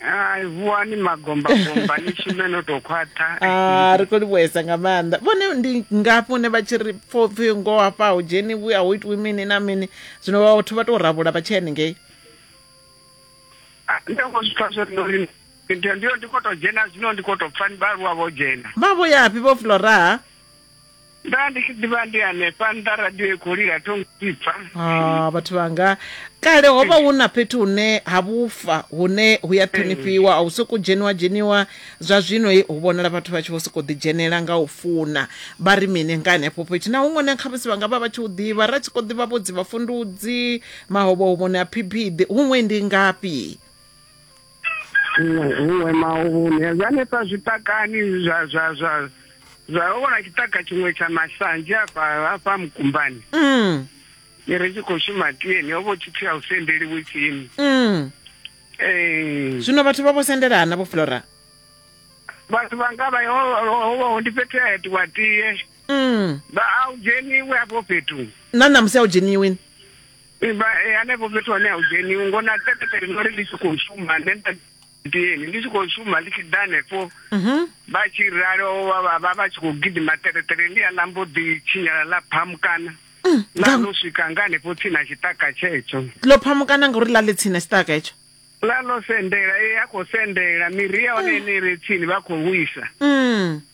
hai vuwani magombagomba ni shume no tou khwaṱha Ah, ri khou livhuesa nga maanḓa vhone ndi ngafhi hune vha tshi ri pfo pfhi ngo hafha hu dzheniwi a hu itiwi mini na mini zwino vhathu vha tou rabula vha tshi henengei Ah, ndo khou zwi pfa zwo no ri ndi- ndiyo ndi khou tou dzhena zwino ndi khou tou pfa ni vhaaluwa vho dzhena vha vho yafhi vho floraha nda ndi tshi ḓivha ndi hanefha nnḓa radio i khou lila thongo ipfa Ah, vhathu vhanga kale ho vha hu na fhethu hune ha vhufa hune hu ya ṱhonifhiwa a hu sokou dzheniwa dzheniwa zwa zwino he hu vhonala vhathu vha tshi vho sokou ḓidzhenela nga u funa vha ri mini nga henefho fhethu na huṅwe na khamusi vha nga vha vha tshi hu ḓivha ra tshi khou ḓivha vho dzi vhafundudzi mahovhohovhoni a phiphiḓi huṅwe ndi ngafhi huṅwe mauvhune zwa hanefha zwiṱakani zwa zwa zwa zwa ho vhona tshiṱaka tshiṅwe tsha masanzhi hafha hafha mukumbani mm. ni ri tshi khou shuma tieni ho vho tshipfi a u sendeliwe tsini mm. ee zwino vhathu vha vho sendelana vho flora vhathu vha nga vha ho ndi fhethu ya itiwa tie mm. vha a u dzheniwe afho fhethu na ṋamusi a u dzheniwini e hanefho fhethu hone ha u dzheniwi ngo na tetetere no ri ndi tshi khou shuma nṋe nda dini ndi tshi khou shuma ndi tshi ḓa hanefho mhm. vha tshi ralo vha vha tshi khou gidima tetetere ndi a lambo ḓi tshinyala ḽa phamukana mm, ḽa no swika nga hanefho tsini na tshiṱaka tshetsho ḽo phamukana ngauri ḽa ḽi tsini na tshiṱaka hetsho ḽa ḽo sendela e a khou sendela miri ya hone mm. ine ire tsini vha khou wisa mm.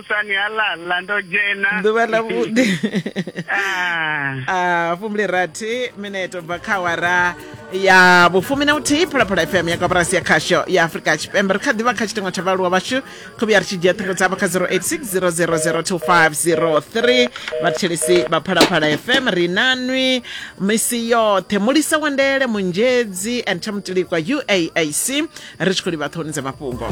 musani ha ḽa ḽa ndo dzhena ḓuvha ḽa vhuḓi a fumble rathi minete bva kha wara ya vhufumi na vhuthihi phalaphala fm ya koporasi ya khasho ya afurika tshipembe ri kha ḓivha kha tshitengo tsha vhaaluwa vhashu khuvhi ya ri tshi dzhia ṱhingo dzavho kha 0860002503 vhathetshelisi vha phalaphala fm ri nanwi misi yoṱhe mulisa wandele munzhedzi and thamutilikwa uaac ri tshi khou livha ṱhoni dza mafhungo